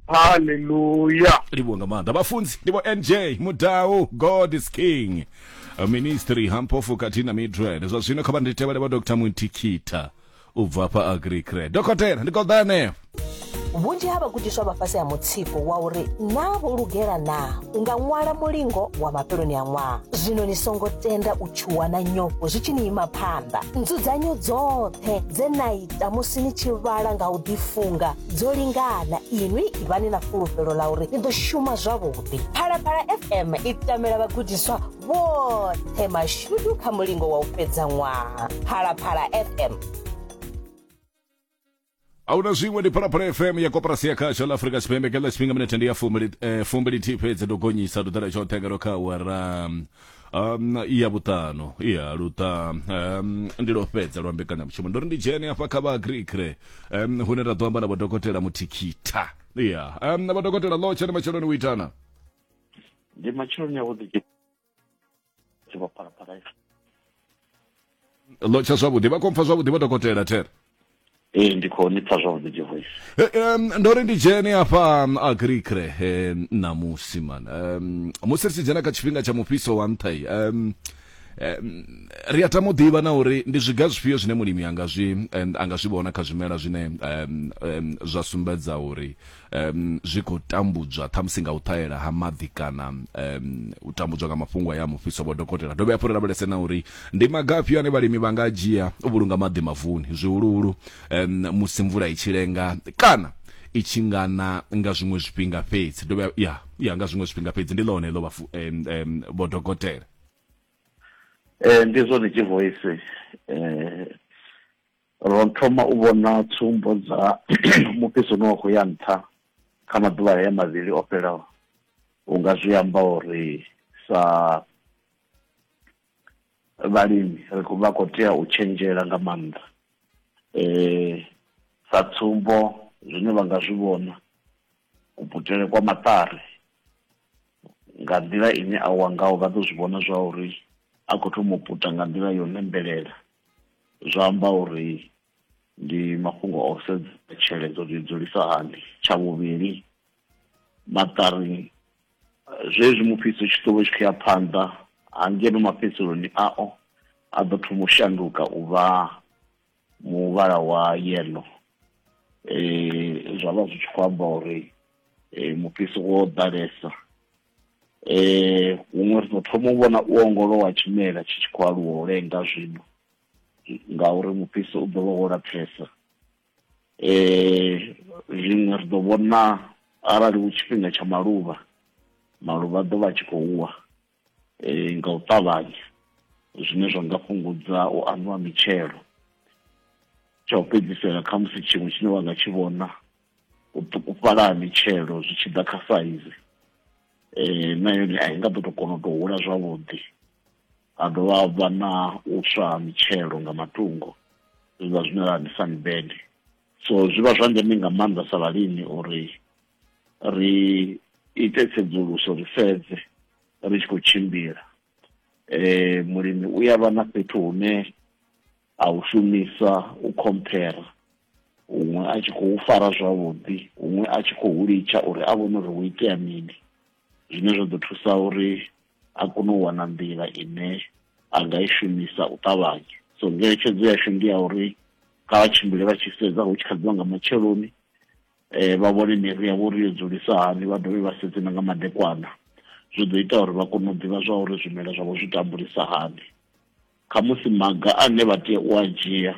haleluya livhuwa nga maanḓa vhafunzi ndi vho nj mudau god is king A ministry hampofu khathihi na midrand zwa zwino kha vha ndi tevhele vha dr muntikhitha u bva hafha agricre dokotela ndi koḓa henefho vhunzhi ha vhagudiswa vha fhasi ha mutsiko wa uri naa vho lugela naa u nga ṅwala mulingo wa mafheloni a ṅwaha zwino ni songo tenda u tshuwa na nyofho zwi tshi ni ima phanḓa nzudzanyo dzoṱhe dze na ita musi ni tshi vhala nga u ḓifunga dzo lingana inwi ivhani na fulufhelo ḽa uri ni ḓo shuma zwavhuḓi phalaphala fm i tamela vhagudiswa vhoṱhe mashudu kha mulingo wa u fhedza ṅwaha phalaphala fm ahuna zwiṅwe ndi phalaphala fm ya koporasi ya khasho ḽa afurika tshipembe kha ḽa tshifhinga minete ndi ya fumbili eh, fumbili thi fhedzi ndo gonyisa ndo ḓala tshoṱhe ngalo kha awara um, ya vhuṱanu ya luṱa um, ndi lwo fhedza lwa mbekanyamushumo ndo ri ndi dzhene hafha kha vha agrikre um, hune ra ḓo amba na vhodokotela muthikhitha ya um, na vhodokotela ḽo tshene matsheloni u itana ndi matsheloni avhuḓi tshivhaphalaphala lo tsha zwavhuḓi vha khou mpfa zwavhuḓi vho dokotela there ee ndi khou ni pfa zwavhuḓi jehoisi Eh, em, ndo ri ndi dzhene hafha mm, agricre eh, ṋamusi man Em, musi ri tshi dzhena kha tshifhinga tsha mufhiso wa nṱha iyi, em, em, ri a tama u ḓivha na uri ndi zwiga zwifhio zwine mulimi anga zwi em, anga zwi vhona kha zwimela zwine em, em, zwa sumbedza uri um zwi khou tambudzwa ṱhamusi nga u ṱahela ha maḓi kana um u tambudzwa nga mafhungo ya mufhiso vho dokotela dovhe hafhu ri lavhelese na uri ndi maga afhio ane vhalimi vha nga dzhia u vhulunga maḓi mavuni zwihuluhulu um musi mvula i tshi lenga kana i tshi nga na nga zwiṅwe zwifhinga fhedzi dovhe ya ya nga zwiṅwe zwifhinga fhedzi ndi ḽone ḽo vha um, um, vho dokotela eh ndi zwone tshi voice eh Ro thoma u vhona tsumbo dza mufhiso une wa khou ya nṱha kha maḓuvha haya mavhili o fhelaho. U nga zwi amba uri sa vhalimi ri khou vha khou tea u tshenzhela nga maanḓa. Sa tsumbo, zwine vha nga zwi vhona, kuputele kwa maṱari nga nḓila ine a wa ngaho vha ḓo zwi vhona zwa uri a khou thoma u puta nga nḓila yo lembelela. zwa amba uri ndi mafhungo o sedza tsheledzo dzo dzulisa hani tsha vhuvhili maṱari zwezwi mufhiso tshi ḓo vha tshi khou ya phanḓa hangeno mafhedziseloni ao a ḓo thoma u shanduka u vha muvhala wa yellow eh zwa vha zwi tshi khou amba uri eh mufhiso wo ḓalesa eh huṅwe ri ḓo thoma u vhona u ongolowa tshimela tshi tshi khou aluwa u lenga zwino ngauri mufhiso u ḓo vha wo lapfesa eh zwiṅwe ri ḓo vhona arali hu tshifhinga tsha maluvha maluvha ḓo vha tshi khou wa eh nga u ṱavhanya zwine zwa nga fhungudza u anwa mitshelo tsha u fhedzisela kha musi tshiṅwe tshine wa nga tshi vhona u ṱukufhala ha mitshelo zwi tshi ḓa kha saizi eh na yone a i nga ḓo to kona u to hula zwavhuḓi ha dovha ha vha na u swa ha mitshelo nga matungo zwi vha zwine ra ndi sunburn so zwi vha zwa ndeme nga maanḓa sa vhalimi uri ri ite tsedzuluso ri sedze ri tshi khou tshimbila eh mulimi u ya vha na fhethu hune a u shumisa u khomphera huṅwe a tshi khou fara zwavhuḓi huṅwe a tshi khou litsha uri a vhone uri hu itea mini zwine zwa ḓo thusa uri a kone u wana nḓila ine a nga i shumisa u ṱavhanya so ngeletshedzo yashu ndi ya uri kha vha tshimbile vha tshi sedza hu tshi kha ḓiwa nga matsheloni um vha vhone miri yavho uri yo dzulisa hani vha dovhe vha sedze na nga madekwana zwi ḓo ita uri vha kone u ḓivha zwa uri zwimela zwavho zwi tambulisa hani khamusi maga ane vha tea u a dzhia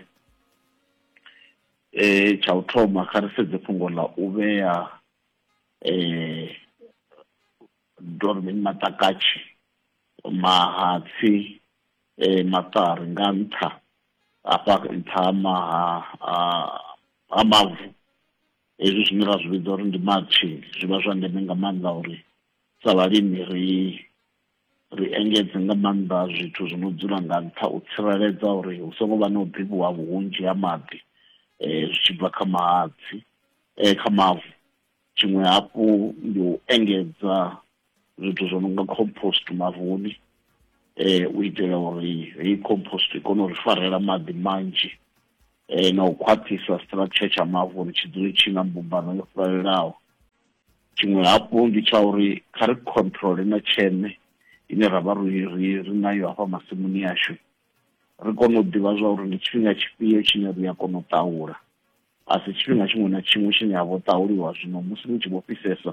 eh tsha u thoma kha ri sedze fhungo ḽa u vhea eh dormini matakatshi mahatsi eh maṱari nga nṱha afha nṱha maha ha mavu hezwi zwine ra zwi vhidza uri ndi matshi zwi vha zwa ndeme nga maanḓa uri sa vhalimi ri ri engedze nga maanḓa zwithu zwi no dzula nga nṱha u tsireledza uri hu songo vha na u bibwa vhunzhi ha maḓi um zwi tshi bva kha mahatsi um kha mavu tshiṅwe hafhu ndi u engedza zwithu zwo no nga compost mavuni um u itela uri heyi compost i kone u ri farela maḓi manzhi um na u khwaṱhisa structure tsha mavu uri tshi dzule tshi na mbumbano yo fhelelaho tshiṅwe hafhu ndi tsha uri kha ri controle na tsheme ine ra vha ri ri ri nayo hafha masimuni ashu ri kone u ḓivha zwa uri ndi tshifhinga tshifhio tshine ri a kona u ṱahula a si tshifhinga tshiṅwe na tshiṅwe tshine ha vho ṱahuliwa zwino musi ni tshi vho fhisesa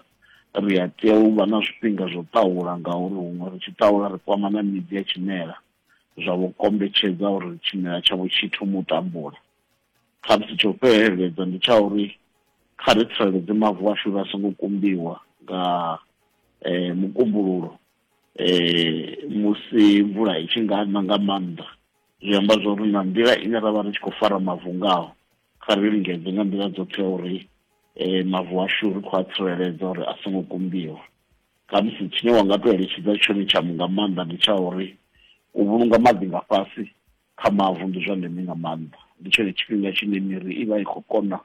ri a tea u vha na zwifhinga zwo ṱahula ngauri huṅwe ri tshi ṱahula ri kwama na midzi ya tshimela zwa vho kombetshedza uri tshimela tshavho tshi thoma u tambula khamusi tsho fheleledza ndi tsha uri kha ri tsireledze mavu ashu uri a songo kumbiwa nga um mukumbululo um musi mvula i tshi nga na nga maanḓa zwi amba zwa uri na nḓila ine ra vha ri tshi khou fara mavu ngaho kha ri lingedze nga nḓila dzoṱhe uri um mavu ashu ri khou a tsireledza uri a songo kumbiwa Khamusi tshine wa nga tou eletshedza tshone tsha nga maanḓa ndi tsha uri u vhulunga maḓi nga fhasi kha mavu ndi zwa ndeme nga maanḓa. Ndi tshone tshifhinga tshine miri i vha i khou kona,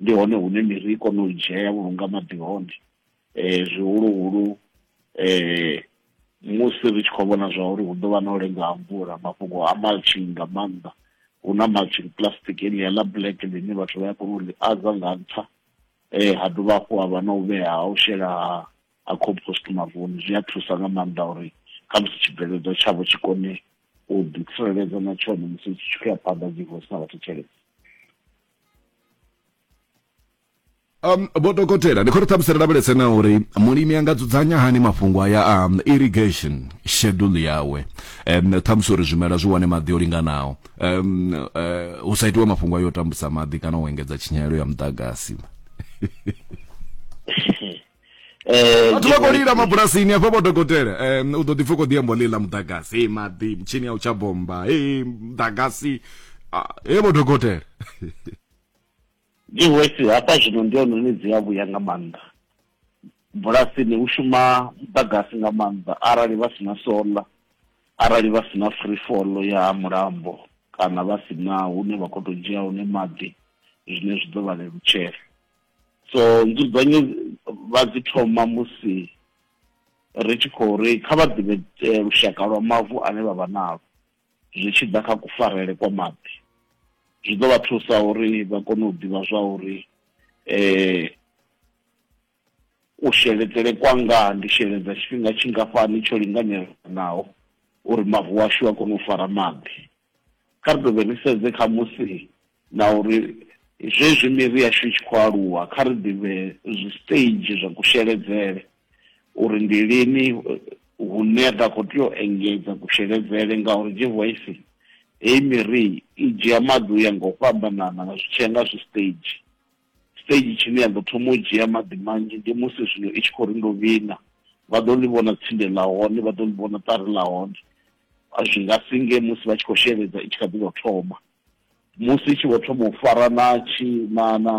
ndi hone hune miri i kona u dzhia ya vhulunga maḓi hone zwihuluhulu musi ri tshi khou vhona zwa uri hu ḓo vha na u lenga ha mvula. Mafhungo a mulching nga maanḓa, hu na mulching plastic heḽia ḽa black ḽine vhathu vha ya kona u ḽi adza nga nṱha eh ha dovha hafhu ha vha na u vhea ha u shela ha ha compost mavuni zwi a thusa nga maanḓa uri khamusi tshibveledzwa tshavho tshi kone u ḓi tsireledza na tshone musi tshi tshi khou ya phanḓa dzi vho sina vhathu tshelede um vho dokotela ndi khou ri ṱhamusi ri lavhelese na uri mulimi a nga dzudzanya hani mafhungo aya a um, irrigation schedule yawe um ṱhamusi uri zwimela zwi wane maḓi o linganaho um, uh, hu sa itiwe mafhungo a yo tambudza maḓi kana u engedza tshinyalelo ya muḓagasi eh, vhathu vha khou lila mabulasini afha vho dokotela um, u ḓo ḓi pfa khou ḓiambo lila muḓagasi e maḓi mutshini ya u tsha bomba e muḓagasi e vho dokotela Ndi hoisi hafha zwino ndi hone hune dzi a vhuya nga maanḓa. Bulasini hu shuma muḓagasi nga maanḓa arali vha si na solar, arali vha si na free fall ya ha mulambo kana vha si na hune vha khou tou dzhia hone maḓi zwine zwi ḓo vha lelutshela. So nzudzanyo vha dzi thoma musi ri tshi khou ri kha vha ḓivhe lushaka lwa mavu ane vha vha nalwo. zwi tshi ḓa kha kufarele kwa maḓi zwi ḓo vha thusa uri vha kone u ḓivha zwa uri eh u sheledzele kwanga ndi sheledza tshifhinga tshingafhani tsho linganelaho uri mavu ashu a kone u fara maḓi kha ri dovhe ri sedze kha musi na uri zwezwi miri yashu i tshi khou aluwa kha ri ḓivhe zwisiteiji zwa kusheledzele uri ndi lini hune ra khou tea u engedza kusheledzele ngauri jehoisi heyi miri i dzhia maḓi u ya nga u fhambanana nga zwi tshiya nga zwi stage stage tshine ya ḓo thoma u dzhia maḓi manzhi ndi musi zwino i tshi khou ri ndo vhina vha ḓo ḽi vhona tsinde ḽa hone vha ḓo ḽi vhona ṱari ḽa hone zwi nga singe musi vha tshi khou sheledza i tshi kha ḓi tou thoma musi i tshi vho thoma u fara na tshi na na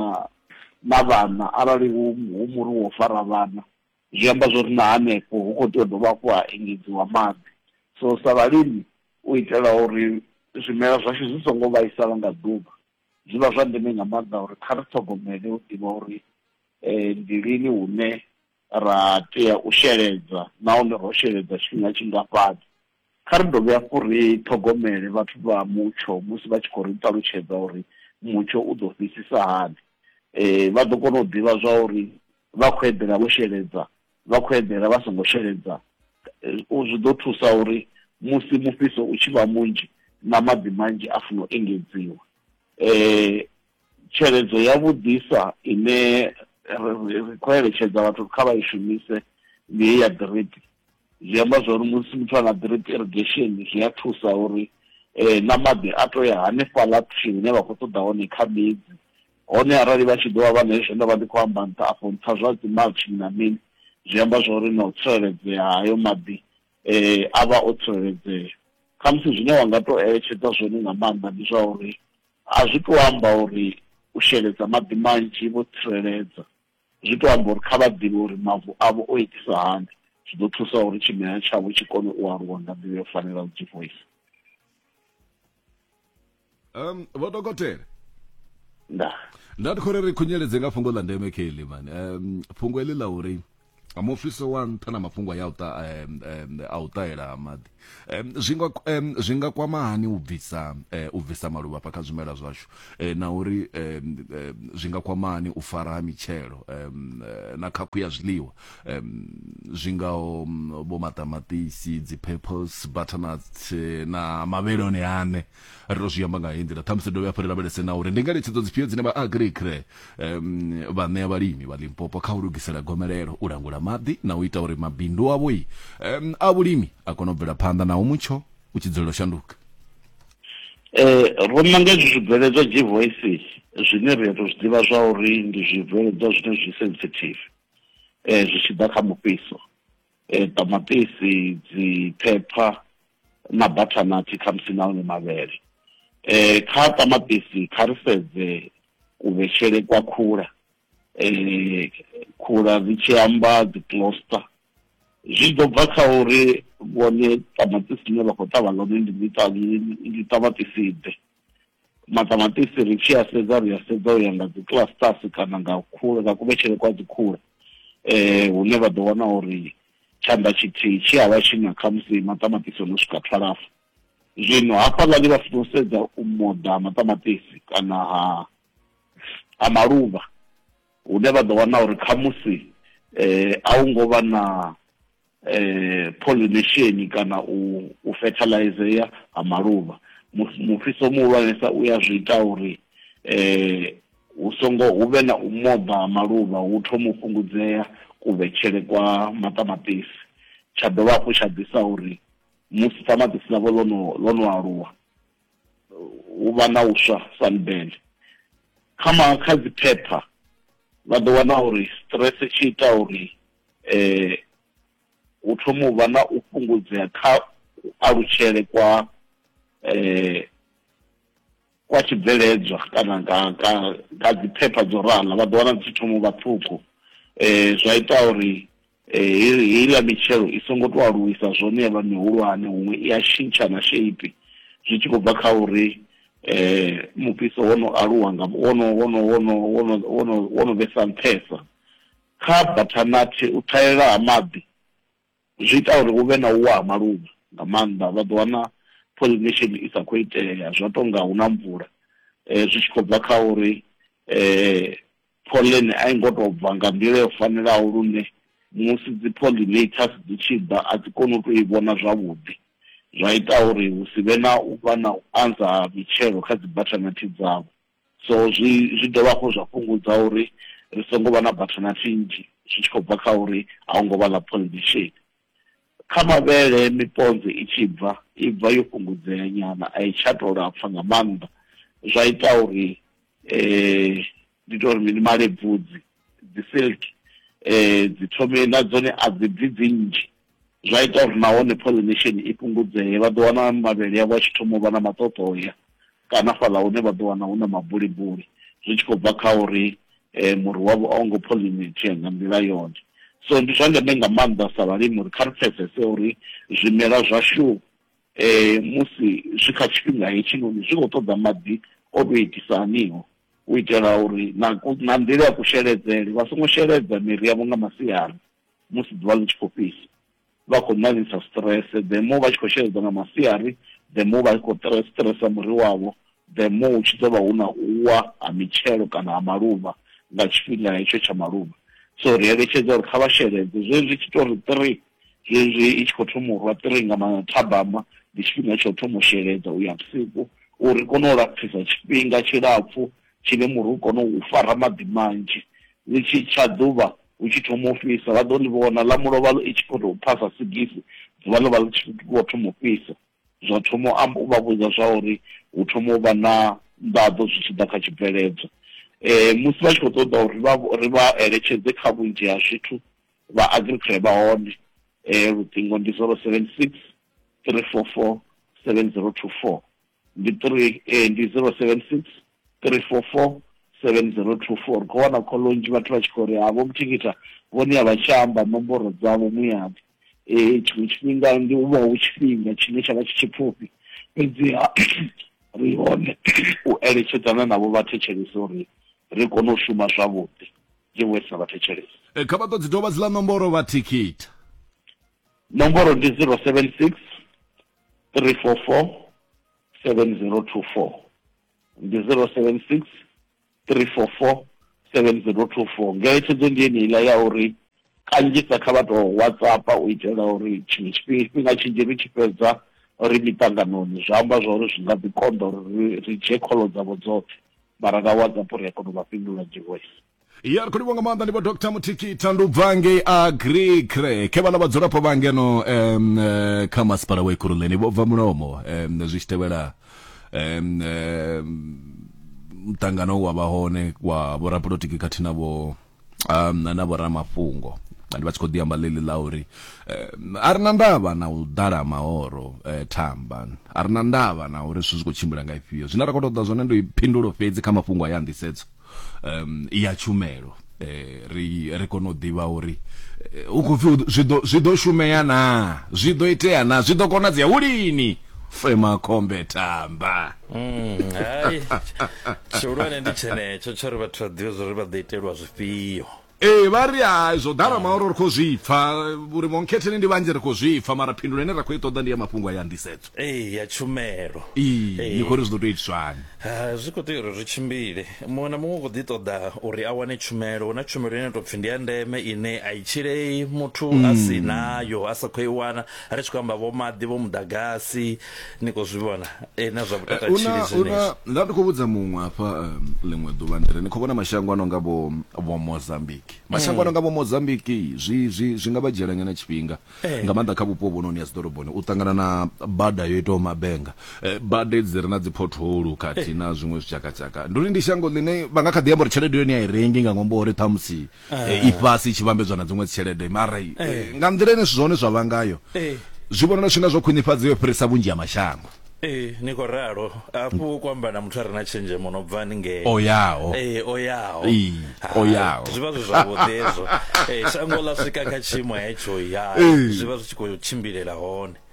na vhana arali hu hu muri wo fara vhana zwi amba zwori na hanefho hu kho tea u dovha hafhu ha engedziwa maḓi so sa vhalimi u itela uri zwimela zwashu zwi songo vhaisala nga ḓuvha zwi vha zwa ndeme nga maanḓa uri kha ri ṱhogomele u ḓivha uri ndi lini hune ra tea u sheledza nahone ro sheledza tshifhinga tshingafhani? Kha ri dovhe hafhu ri ṱhogomele vhathu vha mutsho musi vha tshi khou ri ṱalutshedza uri mutsho u ḓo fhisisa hani. Vha ḓo kona u ḓivha zwa uri vha khou eḓela vho sheledza, vha khou eḓela vha songo sheledza. Zwi ḓo thusa uri musi mufhiso u tshi vha munzhi na maḓi manzhi a funa u engedziwa. tsheledzo ya vhudisa ine ri khou eletshedza vhathu kha vha i shumise ndi heyi ya drip zwi amba zwa uri musi muthu a na drip irrigation zwi a thusa uri um na maḓi a to ya hanefhaḽa thini ine vha khou ṱoḓa hone kha midzi hone arali vha tshi ḓo vha vha na hezwo nda vha ndi khou amba nṱha afho nṱha zwa dzi mulching na mini zwi amba zwa uri na u tsireledzea hayo maḓi um a vha o tsireledzea khamusi zwine wa nga to eletshedza zwone nga maanḓa ndi zwa uri A zwi tou amba uri u sheledza maḓi manzhi vho tsireledza. Zwi tou amba uri kha vha ḓivhe uri mavu avho o itisa hani, zwi ḓo thusa uri tshimela tshavho tshi kone u aluwa nga nḓila yo fanelaho Jehoifa. Um, vho dokotela nda nda ndi khou ri ri khunyeledze nga fhungo ḽa ndeme kha eḽi mani um, fhungo eḽi ḽa uri nga mufhiso wa nṱha na mafhungo ya uta a u ṱahela maḓi zwi nga zwi nga kwama hani u bvisa u bvisa maluvha fha kha zwimela zwashu na uri zwi nga kwama hani u fara ha mitshelo na khakhu ya zwiḽiwa zwi ngaho vho maṱamaṱisi dzi peppers butternuts na mavheloni ane ri to zwi amba nga heyi nḓila ṱhamusi dovhe hafhu ri lavhelese na uri ndi ngeletshedzo dzifhio dzine vha agricre um, vha ṋea vhalimi vha limpopo kha u lugisela gomelelo u langula maḓi na u ita uri mabindu avho um, a vhulimi a kone u bvela phanḓa naho mutsho u tshi dzulela u shanduka eh ro nanga izwi zwibveledzwa g voices zwine ri to zwi ḓivha zwa uri ndi zwibveledzwa zwine zwi sensitive eh zwi tshi ḓa kha mufhiso e, ṱamaṱisi dzi phepha na bathanathi khamusi na one mavhele um kha ṱamaṱisi kha ri sedze kuvhetshele kwa khula um khula dzi tshi amba dzi closter zwi ḓo bva kha uri vhone ṱamaṱisi ḽine vha khou ṱavha ḽone ndi ṱamaṱisi ḓe maṱamaṱisi ri tshi a sedza ri a sedza u ya nga dzi clusters kana nga khule nga kuvhetshele kwa dzi khule eh hune vha ḓo wana uri tshanḓa tshithihi tshi a vha tshi na khamusi maṱamaṱisi ono swika twalafu zwino hafhaḽani vha funa u sedza u moḓa maṱamaṱisi kana ha ha maluvha hune vha ḓo wana uri khamusi eh a hu ngo vha na eh, pollination kana u, u fertilizea ha maluvha mufhiso muhulwanesa u ya zwi ita uri eh, hu songo hu vhe na u moḓa ha maluvha hu thoma u fhungudzea kuvhetshele kwa maṱamaṱisi tsha dovha hafhu tsha ḓisa uri musi ṱamaṱisi ḽavho ḽo no ḽo no aluwa hu vha na uswa sanbele kha ma kha dzi phepha vha ḓo wana uri stress tshi ita uri eh hu thoma u vha na u fhungudzea kha alutshele kwa eh kwa tshibveledzwa kana nga nga nga dzi phepha dzo rala vha ḓo wana dzi thoma u vha ṱhukhu eh zwa ita uri Ee, heiḽa mitshelo i songo tou aluwisa zwone ya vha mihulwane, huṅwe i a tshintsha na sheipi zwi tshi khou bva kha uri mufhiso wo no aluwa nga, wo no, wo no, wo no, wo no, wo no, wo no vhesa nṱhesa. Kha bathanati, u ṱhahelela ha maḓi zwi ita uri hu vhe na u wa ha maluvha nga maanḓa, vha ḓo wana pollination i sa khou itea zwa tou nga hu na mvula zwi tshi khou bva kha uri Pholene a i ngo tou bva nga nḓila yo fanelaho lune musi dzi-pollinators dzi tshi ḓa a dzi koni u tou i vhona zwavhuḓi, zwa ita uri hu si vhe na u vha na u anza ha mitshelo kha dzibathanathi dzavho. So zwi zwi dovha hafhu zwa fhungudza uri ri songo vha na bathanathi nnzhi zwi tshi khou bva kha uri a hu ngo vha ḽa pollination. Kha mavhele miponze i tshi bva, i bva yo fhungudzea nyana, a i tsha tou lapfa nga maanḓa zwa ita uri ndi tou ri mini, malebvudzi, dzi silk dzi thome na dzone a dzi bvi dzi nnzhi. Zwa ita uri nahone pollination i fhungudzee, vha ḓo wana mavhele avho a tshi thoma u vha na maṱoṱoya kana fhaḽa hune vha ḓo wana hu na mabulibuli zwi tshi khou bva kha uri eh, muri wavho a wo ngo pollinate nga nḓila yone so ndi zwa ndeme nga maanḓa sa vhalimi uri kha ri pfesese uri zwimela zwashu eh, musi zwi kha tshifhinga hetshinoni zwi khou ṱoḓa maḓi o tou itisa aniho u itela uri na ku- na nḓila ya kusheledzele vha songo sheledza miri yavho nga masiari musi ḓuvha ḽi tshi khou fhisa vha khou ṋaṋisa stress the more vha tshi khou sheledza nga masiari the more vha khou stressa muri wavho the more hu tshi ḓo vha hu na u wa ha mitshelo kana ha maluvha nga tshifhinga hetsho tsha maluvha so ri eletshedza uri kha vha sheledze zwezwi tshi tori three zwezwi i tshi khou thoma u rwa three nga mathabama ndi tshifhinga tsha u thoma u sheledza u ya vhusiku uri kone u lapfisa tshifhinga tshilapfhu Tshine muri hu kone u fara maḓi manzhi, ḽi tshi tsha ḓuvha hu tshi thoma u fhisa, vha ḓo ḽi vhona, ḽa mulovha i tshi khou tou pfa sa sigisi, ḓuvha ḽo vha ḽi tshi vho thoma u fhisa. Zwa thoma u amba, u vha vhudza zwa uri hu thoma u vha na nḓaḓo zwi tshi ḓa kha tshibveledzwa. Musi vha tshi khou ṱoḓa uri vha ri vha eletshedze kha vhunzhi ha zwithu, vha Agricre vha hone, luṱingo ndi zero seven six three four four seven zero two four. ndi 3 eh, ndi 076 344 7024 kho wana kho lonzhi vhathu vha tshi khou ri havho muthikita vhone a vha tsha amba nomboro dzavho muyavho eh tshiṅwe tshifhinga ndi u vha hu tshifhinga tshine tsha vha tshi tshipfufhi fhedziha ri hone u eletshedzana navho vha thetshelese uri ri kone u shuma zwavhuḓi ndi wesa vha thetshelese eh, kha vha ḓo dzi dovha dzi ḽa nomboro vha thikita nomboro ndi 076 344 7024 ndi 076 344 7024 ngeletshedzo ndi yeneiḽa ya uri kanzhisa kha vha tou whatsappa u itela uri tshiṅwe tshifhinga tshinzhi ri tshi fhedza ri miṱanganoni zwi amba zwa uri zwi nga ḓi konḓa uri ri dzhie kholo dzavho dzoṱhe mara nga whatsappo ri a kona u vha fhindula dzhivoisi ya ri khou livho nga maanḓa ndi vho dr muthiki thandubva ngei agri crake vhana vhadzulapo vha ngeno um, uh, kha masipala wa ikuruleni vho bva mulomo um, zwi tshi tevhela um, um, mutangano wa vha hone wa vhorapolotiki khathihi na vho um, na vhoramafhungo ndi vha tshi khou ḓi amba ḽeḽi ḽa uri um, a ri na ndavha na u ḓala ha mahoro um, thamba a ri na ndavha na uri zwithu zwi khou tshimbila nga ifhio zwine ra khou ṱoḓa zwone ndi phindulo fhedzi kha mafhungo a ya nḓisedzo um ya tshumelo eh ri ri kone u ḓivha uri eh, u khou pfi zwi ḓo zwi ḓo shumea na zwi ḓo itea na zwi ḓo konadzea hu lini fema khombe tamba mm, hai tshihulwane ndi tshenetsho tsho ri vhathu vha ḓivhe zwo ri vha ḓo itelwa zwifhio ee vha ri hai zwo ḓala maoro ri khou zwi pfa uri vhonkhetheni ndi vhanzhi ri khou zwi pfa mara phindulo ine ra khou i ṱoḓa ndi ya mafhungo a ya nḓisedzo ee ya tshumelo ee ni khou ri zwi ḓo tou itiswani Ah, zwi khou tea uri ri tshimbile muṅwe na muṅwe u khou ḓi ṱoḓa uri a wane tshumelo hu na tshumelo ine tou pfhi ndi ya ndeme ine a i tshilei muthu a si nayo a sa khou i wana ri tshi khou amba vho maḓi vho muḓagasi ni khou zwi vhona eh, na zwa vhutata tshili una zwenezwo una nda ndi khou vhudza muṅwe hafha um, ḽiṅwe ḓuvha ndiri ni khou vhona mashango ano nga vho vho mozambique mashango ano nga vho mozambique zwi zwi zwi nga vha dzhiela nyana tshifhinga Eh. nga maanḓa kha vhupo vhononi ya dziḓoroboni u ṱangana na bada yo itaho mabenga Eh, bada dzi re na dzi potholu khathihi na zwiṅwe zwitshakatshaka ndi uri ndi shango ḽine vha nga kha ḓi amba uri tshelede yone a i rengi nga ṅwambo wa uri ṱhamusi eh, ifhasi i tshi vhambedzwa na dziṅwe tshelede mara eh, nga nḓila ine zwithu zwa hone zwa vha ngayo zwi vhonala zwi nga zwo khwinifhadzea u fhirisa vhunzhi ha mashango ee ni khou ralo afho u kwamba na muthu a re na tshenzhemo no bva ningei o yaho ee o yaho o yaho zwi vha zwi zwavhuḓi hezwo ee shango ḽa swika kha tshiimo hetsho ya zwi vha zwi tshi khou tshimbilela hone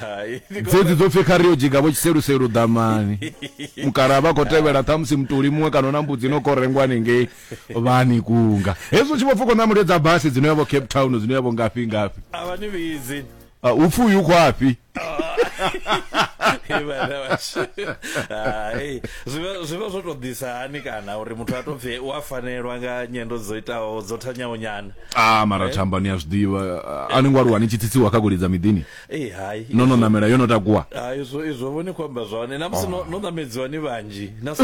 Hai, ndi khou- dzedzi dzo pfi kha ri yo dzhiga vho tshiseluselu ḓamani mukala vha khou tevhela ṱhamusi mutuli muṅwe kana na mbudzi no kho rengwa haningei vhani kunga hezwi u tshi vho pfuka na mulio dza basi dzino yavho cape town dzino yavho ngafhi ngafhi a vha ni vhidzi Ah, u pfi uyu khwafhi Vhana vhashu. Hai, zwi vha- zwi vha zwo to ḓisa hani kana uri muthu a to pfi u a fanelwa nga nyendo dzo itaho dzo thanyaho nyana a mara eh? thamba ni a zwiḓivha eh. a ni ngo aluwa ni tshi tsitsiwa kha golidza miḓini eh, no no namela yo no takuwa izwo vho ni khou amba zwone na musi no namedziwa ni vhanzhi na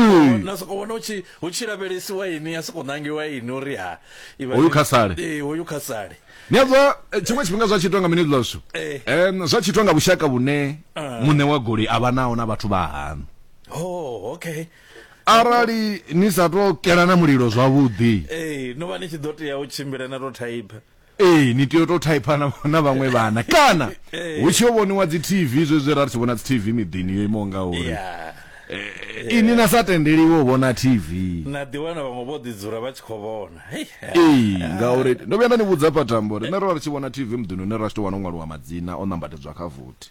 soko vhona hu tshi lavhelesiwa ini ya soko nangiwa ini uri ha hoyu kha sale hoyu kha sale ni a zwa tshiṅwe tshifhinga zwa tshitwa nga mini ḽashu zwa tshitwa nga vhushaka vhune ah. muṋe wa goli a vha naho na vhathu vha hanu oh okay arali ni sa to kela na mulilo zwavhuḓi ee no vha ni tshi ḓo tea u tshimbila na to thaipa ee ni tea u to thaipa na, na vhaṅwe vhana kana hu tshi yo vhoniwa dzi tv zwezwi ra ri tshi vhona dzi tv miḓini yo imaho nga uri ya Eh, ini na sa tendeliwe u vhona tv na ḓiwana vhaṅwe vho ḓi dzula vha tshi khou vhona Hei, ha. ee ngauri ndo vhuya nda ni vhudza patambo rine ro vha ri tshi vhona tv muḓini une ra tshi to wana u ṅwaliwa madzina o nambatedzwa kha vothi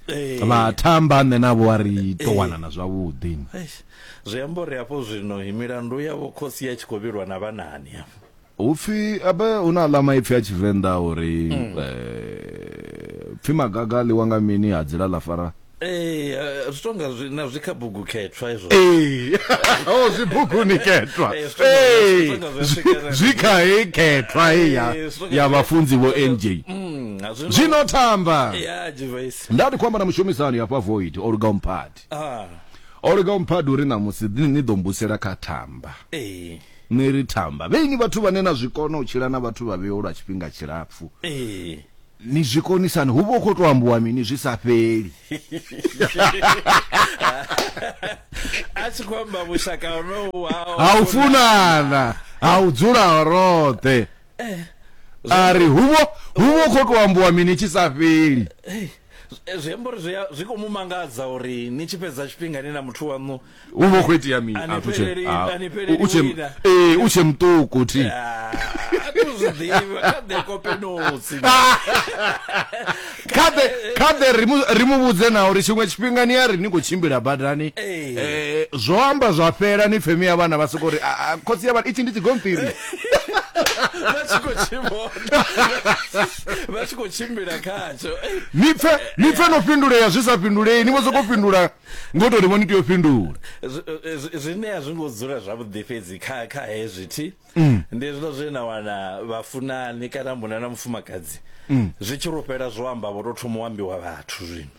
eh. vha thamba nṋe navho a ri to eh. wanana zwavhuḓi zwi amba uri hafho zwino milandu yavho khosi ya tshi khou vhilwa na vhanani hafho upfi abe hu na aḽa maipfi a tshivenḓa uri mm. eh, pfi magaga a ḽiwa nga mini ha dzila ḽa fara ee eh, zwi tonga na zwi kha bugu khethwa izwo ee o oh, zwi buguni khethwa eh, ee zwi kha hei khethwa hei ya vhafunzi vho nj mm. zwino thamba nda ndi khou amba na mushumisani hafha void o luga umphadi ah. o luga umphadi uri ṋamusi ni ḓo mbusela kha thamba eh. ni ri thamba vheinyi vhathu vhane na zwi kona u tshila na vhathu vha vheo lwa tshifhinga tshilapfu eh. ni zwi konisani hu vha u khou tou ambiwa mini zwi sa fheli a tshi khou amba vhushaka honohu ha u funana ha u dzula roṱhe eh, a ri hu vho hu vho khou tou ambiwa mini tshi sa fheli eh, zwi amba uri zwi khou mu mangadza uri ni tshi fhedza tshifhinga ni na muthu waṋu u vho khou itea mini ah, u tshe muṱuku thi ah, khaḓe ri mu vhudze na uri tshiṅwe tshifhinga ni a ri ni khou tshimbila badani eh, zwo amba zwa fhela ni pfemi ya vhana vha soko uri ah, khotsi ya vhana itshi ndi tshigonṱiri vha tshi khou tshivhona vha tshi khou tshimbila khatsho ni pfe ni pfe no fhindulea zwi sa fhindulei ni vho sokou fhindula ngo tou ni vho ni tea u fhindula zwine a zwi ngo dzula zwavhuḓi fhedzi kha kha hezwi thi mm. ndi hezwiḽa zwe na wana vhafunani kana muna na mufumakadzi mm. zwi tshi rufhela zwo amba vho tou thoma u ambiwa vhathu zwino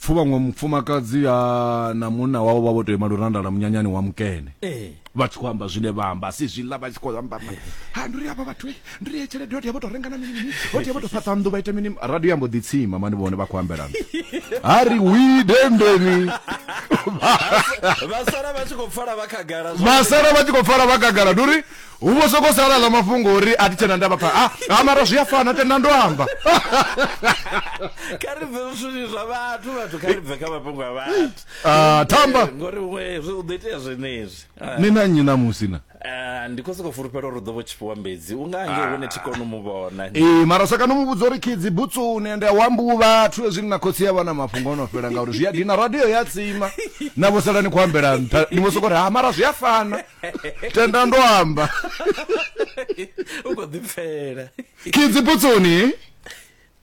pfu vhaṅwe mufumakadzi a na munna wavho vha vho tou ima lurandala munyanyani wa mukene ee vha tshi khou amba zwine vha amba a si zwiḽa vha tshi khou amba amba. ha ndi ri avha vhathu eh, ndi ri ye tshelede hoti ya vho tou renga na mini mini hoti ya vho tou fhaṱa nnḓu vha ita mini radio ya mbo ḓi tsima mani vhone vha khou ambela nṱha ha ri wi dendeni vha sala vha tshi khou pfala vha khagala zwa- vha sala vha tshi khou pfala vha kagala ndi uri Hu vho sokou sala ḽa mafhungo uri a thi tshena ndavha pha. Ha mara zwi a fana tenda ndo amba. Kha ri bve zwithu zwa vhathu vhathu kha ri bve kha mafhungo a vhathu. Ah thamba. Ngori huṅwe zwi u ḓo itea zwenezwi. Ni na nnyi na musi na? Ah ndi khou sokou fulufhela uri u ḓo vho tshifhiwa mbedzi u nga nge hune thi koni u mu vhona. Ee mara sa kana mu vhudza uri khidzi butsuni ende a wambu vhathu hezwi na khotsi ya vha na mafhungo ono fhela ngauri zwi a dina radio ya tsima na vho sala ni khou ambela nṱha ni vho sokou ri ha mara zwi a fana. tenda ndo amba u khou ḓipfela kidzi putsoni